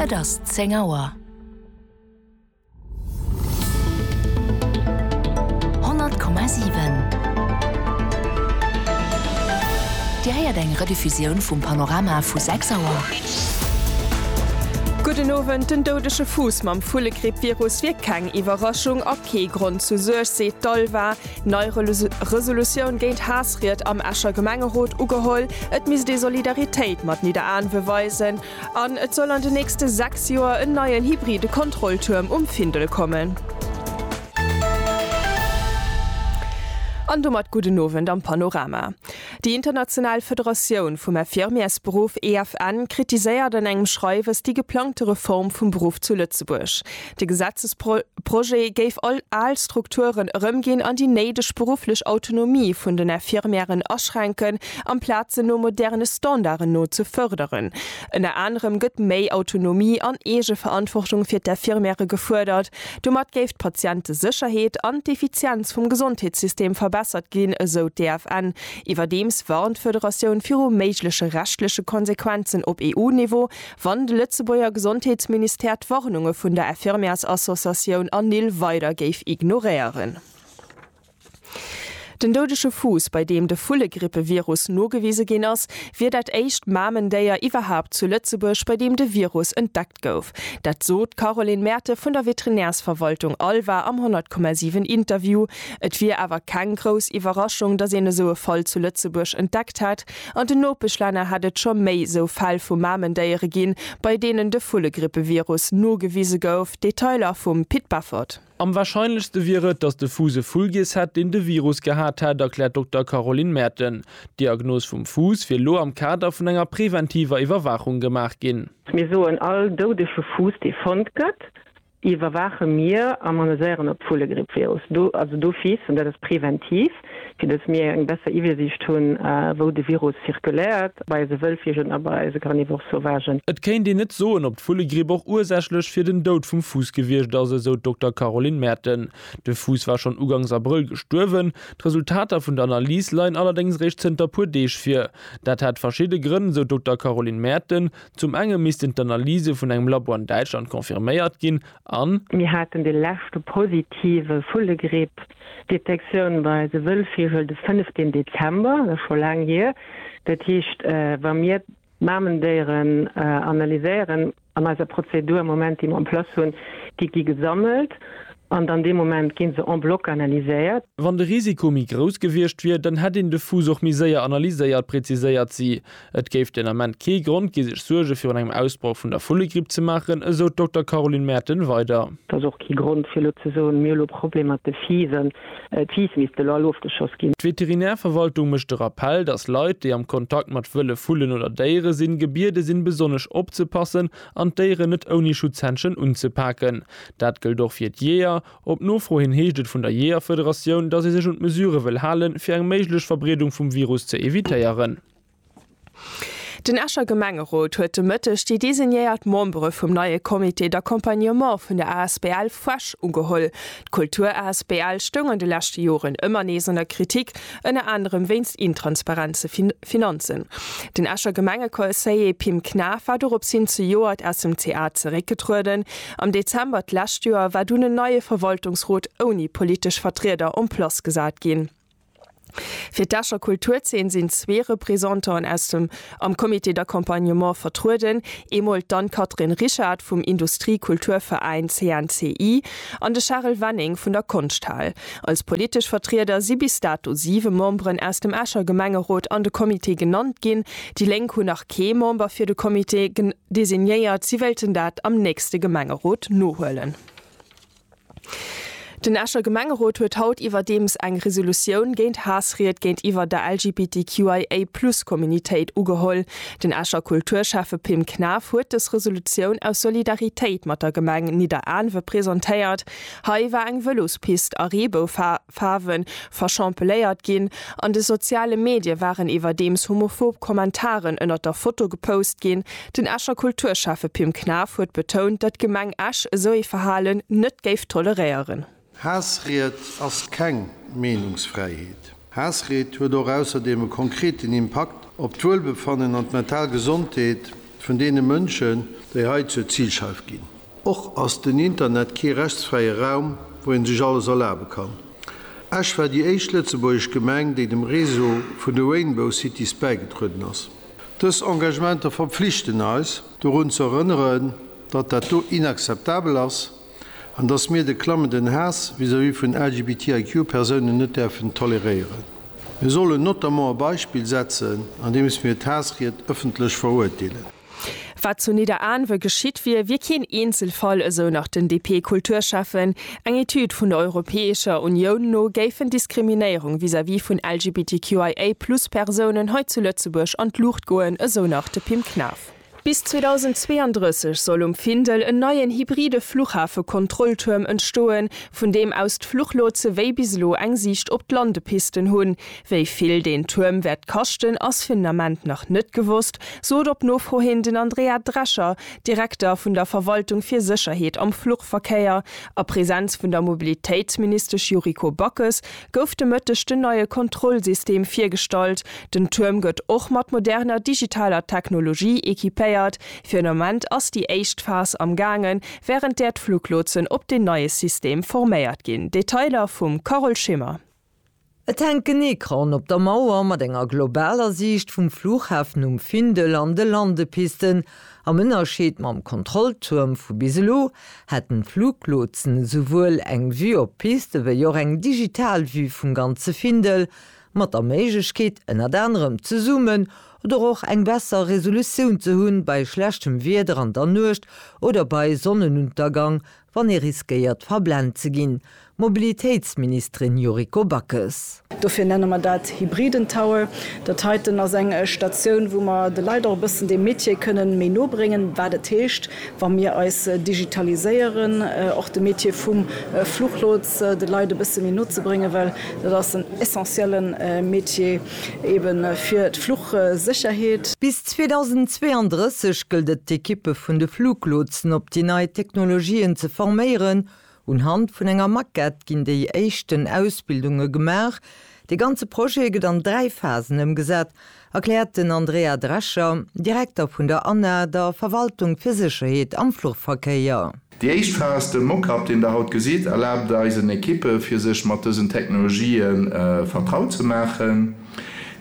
Et ass zéng Auer. Honnert Komma siwen. Dir héiert eng Rediffusioun vum Panorama vu sechs Auer. Gudden Owend, Den doudege Fuuss mam Vullegrippvirus wier keng Iwwerraschung a kee Grond zu Suerg, seet d'ALVA. Nei Resolutioun géint Haassried am Escher Gemengerot ugeholl, Et misst ee Solidaritéit mat Nidderaanwe weisen an et soll an den nächste 6 Joer en neien hybride Kontrolltuerm um Findel kommen. An domat gudden Owend am Panorama. Déi international Federatioun vum Infirmièresberuff, EFN, kritiséiert an engem Schreiwes déi geplangte Reform vum Beruff zu Lëtzebuerg. De Gesetzesprojet géif all al Strukturen erëmginn an déi néideg berufflech Autonomie vun den Infirmièren aschränken, amplaz se no moderne Standarden no ze fërderen. Ënner anerem gëtt méi Autonomie an Eegeverantwortung fir d'Infirmièrë gefuerdert. Domat géif d'Patientesécherheet an d'Effizienz vum Gesondheetssystem verbessert ginn, esou d'EFN. Iwwerdeems warnt d'Federatioun viru méigleche rechtleche Konsequenzen op EU-Niveau. wann de Lëtzebuerger Gesondheetsministère d'Warnunge vun der Infirmièrsassociatioun ANIL weider géif ignoréieren. Den doudege Fuuss, bei deem de Vullegrippevirus nogewise ginn ass, wier dat éischt Mamendéier iwwerhaapt zu Lëtzebuerg, bei deem de Virus entdeckt gouf. Dat sot d'Caroline Merten vun der Veterinärsverwaltung Alva am 100,7 Interview. Et wier awer keng grouss Iwwerraschung, datt een esou e Fall zu Lëtzebuerg entdeckt hätt. An den Nopeschlänner hätt et scho méi esou Fäll vu Mamendéiere ginn, bei deenen de Vullegrippevirus nogewise gouf. Detailer vum Pit Beffort. Am warscheinlechste wier et, datt de Fus e Fullgiess hätt, deen de Virus gehat hätt, erkläert Dokter Caroline Merten. D'Diagnos vum Fus wier elo am Kader vun enger preventiver Iwwerwaachung gemaach ginn. Mir soen all doudege Fus, dee fonnt gëtt, iwwerwaache mir a moniséieren op d'Vullegrippvirus do, also d'Office, an dat ass preventiv, fir datt mir eng besser Iwwersiicht hunn, wou de Virus zirkuléiert, bei eise Wëllvigen a bei eise Carnivores sauvagen. Et kéint een net soen, ob d'Vullegripp och ursächlech fir den Doud vum Fuuss gewiescht ass, esou d'Dokter Caroline Merten. De Fuuss war schonn ugangs Abrëll gestuerwen. D'Resultater vun der Analys leien allerdéngs réischt zënter puer Deeg vir. Dat hätt verschidde Grënn, esou d'Dokter Caroline Merten, Zum enge missten d'Analyse vun engem Labo an Däitschland confirméiert ginn an. Mir haten de leschte positive Vullegripp-Detektioun bei de Wëllvigel de 15 Dezember, dat ass scho laang hier. Dat heescht, wa mir d'Mamendéieren analyséieren an eiser Prozedur am Moment, déi mer en place hunn, déi gi gesammelt an dann dee Moment gi se en bloc analyséiert. Wann de Risiko méi grouss gewiescht wier, dann hätt een de Fuuss och méi séier analyséiert, präziséiert si. Et géif den Ament kee Grond gi sech Suerge virun engem Ausbroch vun der Vullegripp ze maachen, esou d'Dokter Caroline Merten weider. Et ass och kee Grond fir elo ze soen, mir hu lo Problemer mat de Fiisen, d'Fiiss misste elo all ofgeschoss ginn. D'Veterinärverwaltung mécht de Rappell, datt Leit, déi am Kontakt mat wëlle Vullen oder Déiere sinn, gebiede sinn, besonnesch opzepassen an d'Déieren net ouni Schutzhändschen unzepaken. Dat gëllt och fir d'Jeeër. Op Nofro hin heescht et vun der Jeeërfederatioun, datt ee sech un d'Mesurë wëll halen, fir eng méiglech Verbreedung vum Virus ze evitéieren. Den Escher Gemengerot huet de Mëtteg déi designéiert Membere vum neie Comité d'accompagnement vun der asbl Fuesch ugeholl. D'Kultur-asbl stoung an de leschte Joren ëmmer nees an der Kritik, ënner anerem wéinst intransparente Finanzen. Den Escher Gemengeconseiller Pim Knaff war dorops hin zejoert aus dem CA zeréckgetrueden. Am Dezember d'lescht Joer war dunn en neie Verwaltungsrot ouni politesch Vertrieder en place gesat ginn. Fir d'Escher Kulturzeen sinn zwee Representanten aus dem am Comité d'accompagnement vertrueden, eemol d'Anne-Catherine Richard vum Industrie-Kulturveräin CNCI an de Charel Wenning vun der Konschthal. Als politesch Vertrieder si bis dato siwe Memberen aus dem Escher Gemengerot an de Comité genannt ginn. Déi Lénk hunn nach kee Member fir de Comité designéiert, si wéilten dat am nächste Gemengerot nohuelen. Den Escher Gemengerot huet haut iwwerdeems eng Resolutioun géint Haassried géintiwwer der LGBTQIA-Plus-Communitéit ugeholl. Den Escher Kulturschäffe Pim Knaff huet dës Resolutioun aus Solidaritéit mat der Gemeng Nidderaanwe presentéiert. Hei war eng Vëlospist a Reebou Faarwe verschampeléiert ginn. An de soziale Medie waren iwwerdeems homophob Kommentaren ënnert der Foto gepost ginn. Den Escher Kulturschäffe Pim Knaff huet betount, datt d'Gemeng Esch esou ee Verhalen net géif toleréieren. Haassried ass keng Meenungsfräiheet. Haassried huet och ausserdeem e konkreten Impakt op d'Wuelbefannen an d'mental Gesondheet vun deene Mënschen, déi hei zur Zilscheif ginn. Och ass den Internet kee rechtsfräie Raum, wou een sech alles erlabe kann. Esch war déi éischt lëtzebuergesch Gemeng, déi dem Réseau vun de Rainbow Cities bäigetrueden ass. Dës Engagementer verpflichten eis, dorun ze erënneren, datt dat do inakzeptabel ass an datt mir de klammenden Haass vis-à-vis vun LGBTIQ-Persounen net däerfen toleréieren. Mir sollen notamment e Beispill setzen, andeems mir d'Haassried ëffentlech verurteelen. Wat zu Nidderaanwe geschitt wier, wier keen Eenzelfall, esou nach den DP-Kulturschäffen. Eng Etüd vun der Europäescher Unioun no géifen Diskriminéierung vis-à-vis vun LGBTQIA-Plus-Persounen hei zu Lëtzebuerg an d'Luucht goen, esou nach de Pim Knaff. Bis 2032 soll um Findel en neien hybride Fluchhafe-Kontrolltuerm entstoen, vun deem aus d'Fluchlotse wéi bis elo eng Siicht op d'Landepisten hunn. Wéi vill deen Tuerm wäert kaschten, ass fir den Ament nach net gewosst, sot op Nofro hin den Andrea Drescher, Direkter vun der Verwaltung fir Sécherheet am Fluchverkéier. A Presenz vun der Mobilitéitsministesch Yuriko Backes gouf de Mëtteg den neie Kontrollsystem virgestallt. Den Tuerm gëtt och mat moderner digitaler Technologie equipéiert. Fir den Ament ass déi éischt Phas am gaangen, wärend där d'Fluglotsen op deen neie System forméiert ginn. Detailer vum Carole Schimmer. Et hänkt en Ecran op der Mauer mat enger globaler Siicht vum Flughafen um Findel an de Landepisten. Am Ënnerscheed mam Kontrolltuerm vu bis elo hätten d'Fluglotsen esouwuel eng Vue op d'Piste wéi och eng digital Vue vum ganze Findel, mat der Méiglechkeet ënnert anerem ze zoomen oder och eng besser Resolutioun ze hunn bei schlechtem Wieder an der Nuecht oder bei Sonnenuntergang wann ee riskéiert verblent ze ginn, Mobilitéitsministerin Yuriko Backes. Dofir nenne mer dat hybriden Tower. Dat heiten ass eng Statioun, wou mer de Leit och e bëssen dee Metier kënnen méi no bréngen, wat et heescht, wa mir eis digitaliséieren, och de Metier vum Fluchlots de Leit e bësse méi no ze bréngen, well dat ass en essentielle Metier. Eben fir d'Fluchsécherheet. Bis 2032 gëllt et d'Ekippe vun de Fluglotsen op déi nei Technologien ze forméieren. Un Hand vun enger Maquette ginn déi éischten Ausbildunge gemaach. De ganze Projet gëtt an dräi Phasen ëmgesat, erkläert den Andrea Drescher, Direkter vun der ANA, der Verwaltung fir Sécherheet am Fluchverkéier. Déi éischt Phas, de Mockup, deen der haut gesitt, erlaabt eisen Ekippe fir sech mat dësen Technologië vertraut ze maachen.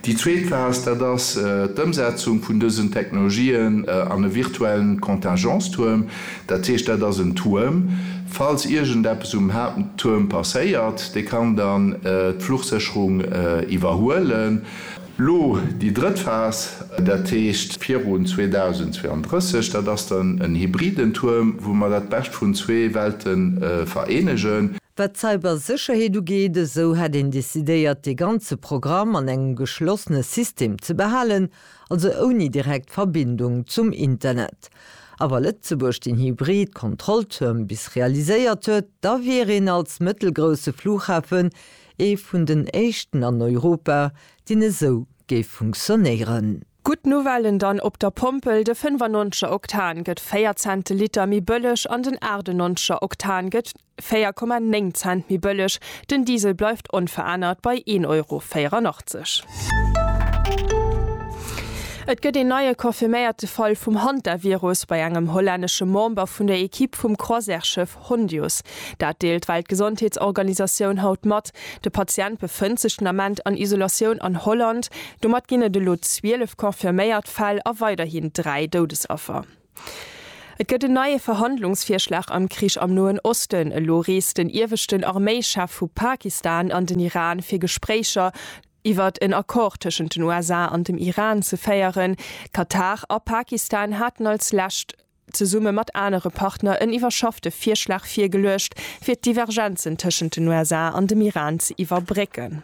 Déi zweet Phas, dat ass d'Ëmsetzung vun dësen Technologien an e virtuellen Contingence-Tuerm. Dat heescht, dat ass en Tuerm, falls iergendeppes um Haapttuerm passéiert, dee kann dann d'Fluchsécherung iwwerhuelen. Lo déi drëtt Phas, dat heescht virun 2032, dat ass dann en hybriden Tuerm, wou mer dat Bescht vun zwee Welte vereenegen. Wat d'Cybersécherheet ugeet, esou hätt een decidéiert, dee ganze Programm an engem geschlossene System ze behalen, also ouni direkt Verbindung zum Internet. A wa Lëtzebuerg den hybrid Kontrolltuerm bis realiséiert huet, da wier een als mëttelgrousse Flughafen Ee vun den éischten an Europa, deen esou géif funktionéieren. Gutt Nouvellen dann, Op der Pompel, de 95er Oktan gëtt 4 Cent de Liter méi bëlleg an den 98er Oktan gëtt 4,9 Cent méi bëlleg. Den Diesel bleift onverännert bei 1 Euro 84. Et gëtt een neie confirméierte Fall vum Hantavirus bei engem hollännesche Member vun der Ekipp vum Croisièreschëff. Hondius. Dat deelt d'Weltgesondheetsorganisatioun haut mat. De Patient befënnt sech den Ament an Isolatioun an Holland. Domat ginn et elo 12 confirméiert Fäll a weiderhin 3 Doudesaffer. Et gëtt en neie Verhandlungsvirschlag am Krich am Noen Osten. Elo reest den ieweschten Arméichef vu Pakistan an den Iran fir Gespréicher iwwert en Accord tëschent den USA an dem Iran ze féieren. Katar a Pakistan haten als lescht zesumme mat anere Partner en iwwerschaffte Virschlag virgeluecht, fir d'Divergenzen tëschent den USA an dem Iran ze iwwerbrécken.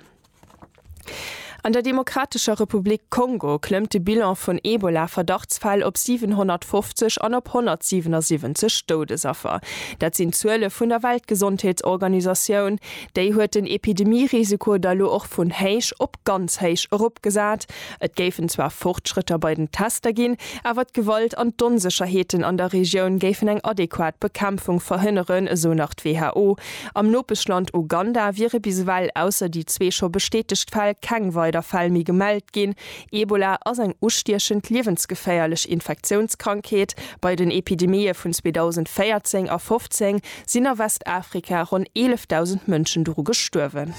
An der Demokratescher Republik Kongo klëmmt de Bilan vun Ebola-Verdachtsfäll op 750 an op 177 Doudesaffer. Dat sinn d'Zuele vun der Weltgesondheetsorganisatioun. Déi huet den Epidemie-Risiko da lo och vun héich op ganz héich eropgesat. Et géifen zwar Fortschrëtter bei den Tester ginn, awer d'Gewalt an d'Onsécherheeten an der Regioun géifen eng adequat Bekämpfung verhënneren, esou nach d'WHO. Am Nopeschland Uganda wiere bis ewell, ausser déi zwee scho bestätegt Fäll, keng weider Fäll méi gemellt ginn. Ebola ass eng ustiechend, liewensgeféierlech Infektiounskrankheet. Bei den Epidemië vun 2014 a 15 sinn a Westafrika ronn 11.000 Mënschen doru gestuerwen.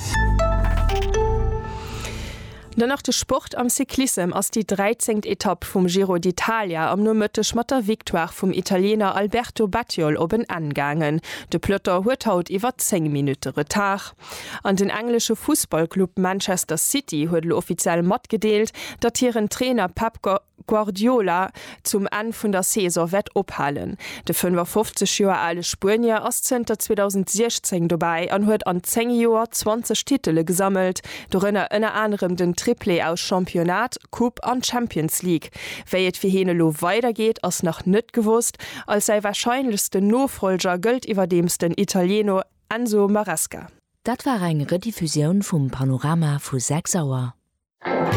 Dann nach de Sport, Am Cyclissem ass déi 13. Etapp vum Giro d'Italia am Nomëtteg mat der Victoire vum Italiener Alberto Bettiol op en Enn gaangen. De Peloton huet haut iwwer 10 Minutte Retard. An den englesche Fussballclub Manchester City huet elo offiziell matgedeelt, datt hiren Trainer Pep Guardiola zum Enn vun der Saison wäert ophalen. De 55 Joer ale Spuenier ass zënter 2016 dobäi an huet an 10 Joer 20 Titele gesammelt, dorënner ënner anerem den Triplé aus Championnat, Coupe an Champions League. Wéi et fir hien elo weidergeet, ass nach net gewosst. Als säi warscheinlechsten Nofollger gëllt iwwerdeems den Italieno Enzo Maresca. Dat war eng Rediffusioun vum Panorama vu 6 Auer.